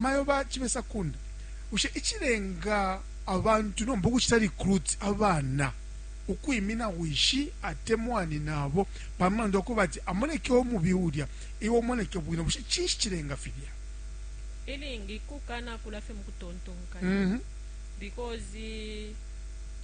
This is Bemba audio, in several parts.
Bamayo ba Chibesa Kunda, Bushe icilenga abantu nomba ukucita recruit abana ukwimina wishi atemwa nyinabo pa mulandu wa kuba ati amoneke umubi ulya iwe umoneke bwino, bushe cinshi cilenga filya? Ilingi kukanakula fye mu kutontonkanya because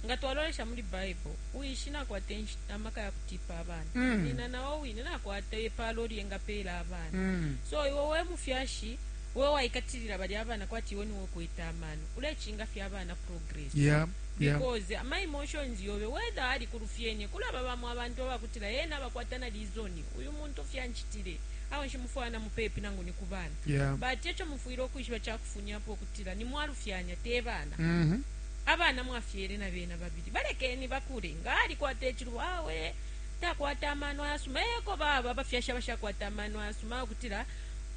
nga twalolesha muli Baibo, wishi nakwata amaka ya kutiipa abana, nyina na o wine nakwata ipaalo lye engapeela abana. So iwe we mufyashi we waikatilila balya abana kwati iwe niwe ukwete amano ulecinga fye abana progress yeah, yeah. because ama emotions yobe whether ali kulufyenye kulaba bamo abantu abakutila yena abakwata na lizoni uyu muntu fyanchitile awe nshimufwaya na mupepi nangu ni kubana yeah. but echo mufwile ukwishiba chakufunyapo kutila ni mwalufyanya te bana mm -hmm. abana mwafyele na bena babili balekeni bakule nga ali kwata echilu awe takwata amano ayasuma eko baba bafyashi abashakwata amano ayasuma okutila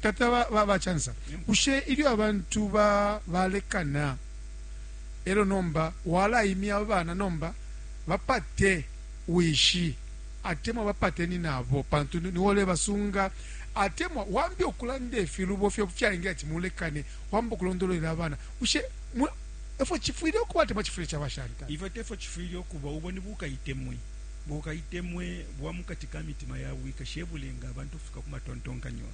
Tata ba ba Chansa, bushe ilyo abantu ba balekana elyo nomba walaimya abana nomba bapate wishi atemwa bapate ninabo pantu niwe ulebasunga atemwa wambi ukulanda ifilubo fyo fyaengela ati mulekane wamba ukulondolwela abana bushe efo chifwile ukuba atemwa chifwile chaba shanta ifyo tefo chifwile ukuba ubo ni bukaitemwe bukaitemwe bwa mukati ka mitima yabo ikashebulenga abantu ukufika ku matontonkanyo.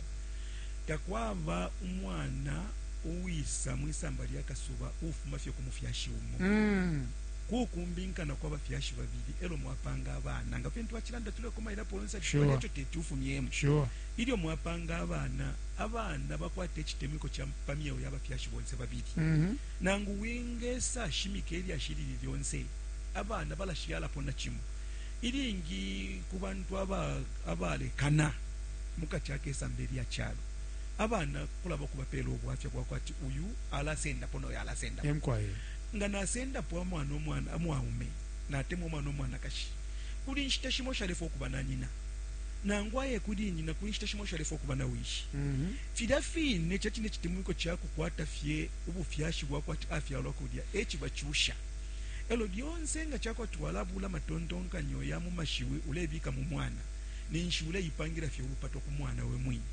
Takwaba umwana uwisa mu isamba lya kasuba uufuma fye ku mufyashi umo. Mm. Kukumbinkana kwa bafyashi babili elo mwapanga abana nga fintu twacilanda tulekomailapo yonse sure. Ekyo teti ufumyemo sure. Ilyo mwapanga abana abana bakwata ekitemiko kya pa myeo y'abafyashi bonse babili mm -hmm. nangu wingesa shimika elyashi lili lyonse abana balashyalapo na kimo Ilingi ku bantu abalekana mukati akesambe lya calo, abana kulaba ukubapela ubwafya bwakwe ati uyu alasendapo noyo alasendapo. Mukwai nga nasendapo amwana umwana mwaume natemwa umwana umwanakashi kuli nshita shimo shalefwa ukuba na nyina nangu aye kuli nyina kuli nshita shimo shalefwa ukuba na wishi. Filya fine cacine citemwiko cakukwata fye ubufyashi bwakwe ati afyalwa kulya ecibacusha. Elo lyonse nga cakwati walabula matontonkanyo ya mu mashiwi ulebika mu mwana, ninshi uleipangilafye ulupato ku mwana we mwine.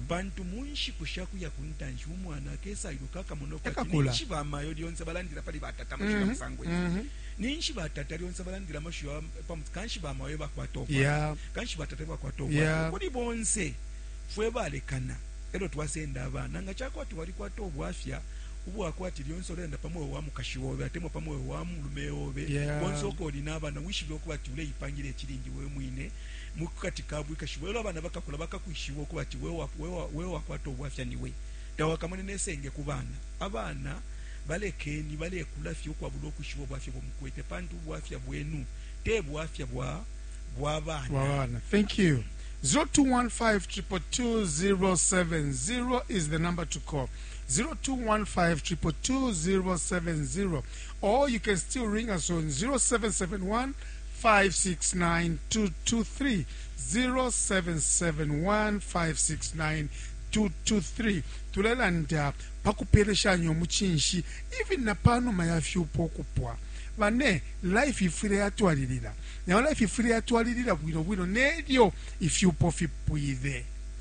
Pantu mu nshiku sha kuya ku ntanshi umwana akesa iluka, akamona ukwati ninshi bamayo lyonse balandila pali batata amashiwi ya mm-hmm. musango ifi, mm-hmm. ninshi batata lyonse balandila amashiwi ya pamuti, kanshi bamayo ebakwata ubwafya, kanshi batata ebakwata ubwafya. Kuli bonse fwe balekana elo twasenda abana, nga cakwati walikwata ubwafya ubwa kwati lyonse ulelanda pa mweo wa mukashi obe atemwa pa mweo wa mulume obe yeah. konse uko uli n'abana wishibe ukuba ati uleipangila icilindi we mwine mu kati ka bwikashi bwelo abana bakakula bakakwishiba ukuba ati we wakwata ubwafya niwe tawakamone nesenge ku bana abana balekeni balekula fye ukwabula ukwishiba ubwafya bumukwete pantu ubwafya bwenu te bwafya bwa bwa bana thank you 0215 222 070 is the number to call 0215222070 or you can still ring us on 0771 5692223 0771 5692223 tulelanda pa kupeleshanya umucinshi even na panuma ya fyupo okupwa bane life ifwile yatwalilila nayo life ifwile yatwalilila bwino bwino nelyo ifyupo fipwile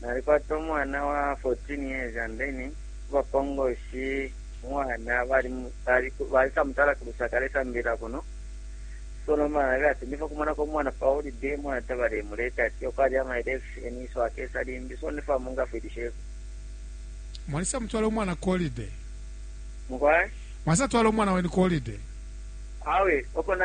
Nalikwata umwana wa 14 years and then kubapongoshi umwana balisamutala ku Lusaka alesambilila kuno so nomba nalabila ati ndifo kumonako umwana pa holiday umwana tabalemuleta ati yoko ali ama election so akesa limbi so ndifo amungafwilisheko mwalisa mutwala umwana ku holiday mukwai mwasa twala umwana wenu ku holiday awe oko na